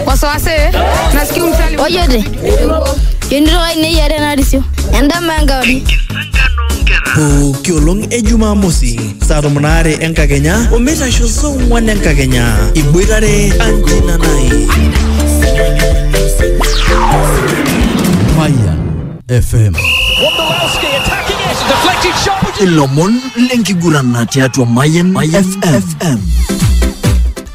wasiwasi nasikia msali ojote yonitoka inei are narisio endama enkauri pooki olong e jumamosi saa tomon aare enkakenya omeitasho saa ong'wan enkakenya iboitare anjina nai Fire FM. Ilomon lenkiguran na tiatua Mayan FM.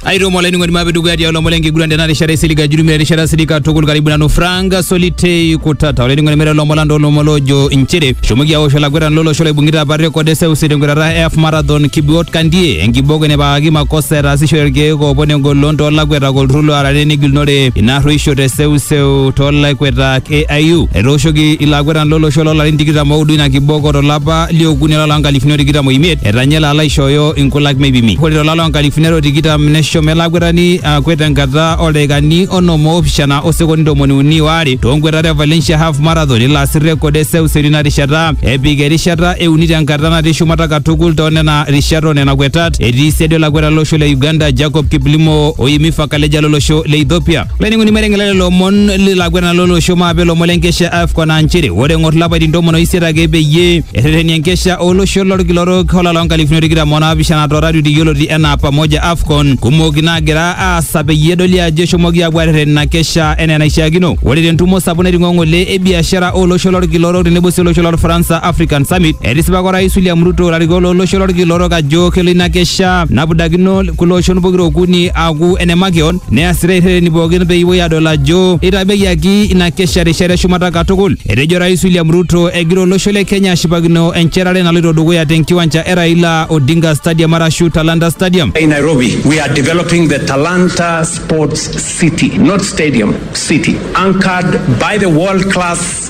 aitomo olainining'oni mape dukuya tialo lomon lenkiguran tena rishata isilig ajurumia erishata silig katukul karibu nanu frank solitei kutata olainining'oni mere lomon lando lomon loojo inchere shomoki awosh olakwetani lolosho loibung'ita apa rekod e seuseu tenkwetata e half marathon kibiot kandie enkiboko enepakaki makosa etaasishore irkeek oopon engolon toolakwetak olturrur loarare negilunore ina arrueisho te seuseu toolakwetak AIU etooshoki ilakwetani lolosho loolarin tikitam oudo ina kiboko tolapa liokuni olapa loonkalifuni o tikitam oimiet etanya elo alo aishooyo inkulak meipimi ore tolapa nkalifuni are o tikitam neshomo ele akwetani akwet tenkata oldaikani onom oopishana osekondi ntomoni uni oare toonkwetata e Valencia Half Marathon ilo asir rekod e seuseu tina rishata epik erishata e uni tenkata natii shumata katukul too nena rishat o nena kwetat etii siadi olakwetani lolosho le Uganda Jacob Kiplimo o Yemi Fakaleja lolosho le Ethiopia. laining'oni maiteng'ela lelo omon lilakwena lolosho maape lomon lenkesha afcon aa nchere ore eng'or lapaitin tomon oisiet ake peyie erreteni enkesha olosho lolkila orok olala loonkalifuni o tikitam onaapishana toratioti yioloti enaa pamoja afcon kumok naagira aasa peyie edoli ajo eshomoki aapuo arreten ina kesha enaa enaishiakino ore tentumo sapuk naiting'o ng'ole e biashara olosho lolkila orok tenebo sii olosho lolfaransa african summit etisipaka orais william ruto ilarikok lolosho lolkila orok ajo kelo ina kesha napudakino kulo oshon pokira okuni aaku ene makeon Neasita irhereni pookin peyie epuoi adol ajo eitabeyiaki ina kesha rishata eshumata katukul. Etejo Rais William Ruto egira olosho le Kenya ashipakino enchetare naloito dukuya te nkiwanja e Raila Odinga Stadium arashu Talanta Stadium. In Nairobi, we are developing the Talanta Sports City, not stadium, city, anchored by the world-class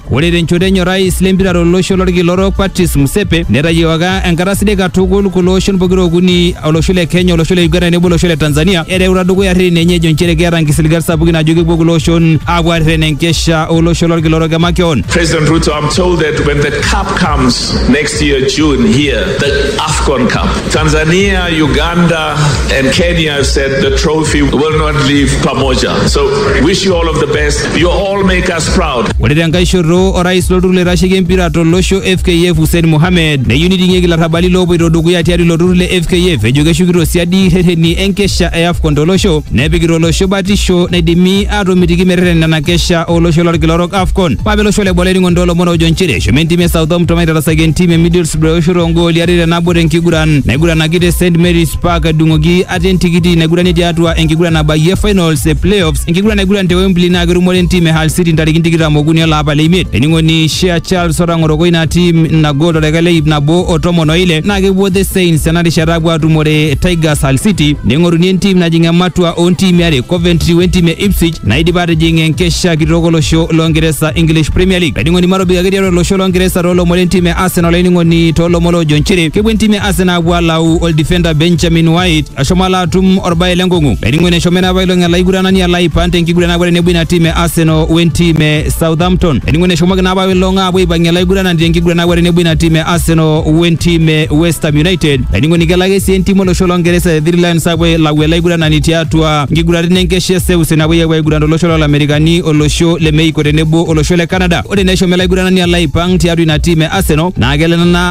Ore tenchoto enye orais lempira tolosho lorkila orok Patrice Msepe netayiewaka enkata sidai katukul kulo oshon pokira okuni olosho le Kenya, olosho le Uganda tenebo olosho le Tanzania ereuta dukuya rreteni enye ejo nchere keeta nkisiligat sapukin ajo kepuo kulo oshon aapuo aarreten enkesha olosho lorkila orok emakeon. President Ruto, I'm told that when the cup comes next year, June, here, the AFCON Cup, Tanzania, Uganda, and Kenya have said the trophy will not leave Pamoja. So, wish you all of the best. You all make us proud. Ore tenkae shoto orais lolturur loitasheki empira tolosho FKF Hussein Mohamed neyieu niting'ieki larrabali loopoito dukuya tiatua ilo turur le FKF ejo keshukito siadi rreteni enkesha e AFCON tolosho nepikita olosho batisho naidimi aatomitiki merreten nena kesha olosho lolkila orok AFCON. Mape olosho le Bole ning'ondo olomon oojo nchere eshomo entim e Southampton aitarasaki entim e Middlesbrough eoshoto oongooli are te nabo tenkiguran naiguranaki te St Mary's Park edung'oki ate entikiti naiguranie tiatua enkiguran nabayie finals e playoffs Enkiguran naiguran te Wembley naa ketumore entim e Hull City ntarikini tikitam okuni ele apa le imiet. Ening'oni Shea Charles otang'oroko ina tim ina gol toldaika le ip nabo o tomon o ile naa kepuo The Saints ena rishata apuo atumore Tigers Hull City neing'oruni entim najing ematua oo ntiimi are Coventry we ntim e Ipswich naidipa atijing enkesha kitok olosho loo Ngeresa English Premier League. Laining'oni matobik ake tiatua olosho loo Ngeresa too lomon le ntim e Arsenal laining'oni too lomon loojo nchere kepuo entim e Arsenal apuo alau oldifenda Benjamin White Ashomo ala atum orbae lenkong'u laining'oni eshomo ena apailong ele aiguranani ala aipang tenkiguran naapuo tenebo ina tim e Arsenal wentim e Southampton laining'oni eshomoki naa apailong aapuo aipang'ie ele aiguranani tenkiguran naapuo tenebo ina tim e Arsenal wentim e West Ham United laining'oni kelo ake sii entim olosho longeresa e Three Lions aapuo ailau ele aiguranani tiatua nkiguraritin enkesha e seuseu napuoi apuo aiguran tolosho lolamerikani olosho le Mexico tenebo olosho le Canada ore naa eshomo ele aiguranani ala aipang tiatua ina tim e Arsenal naa kelo ena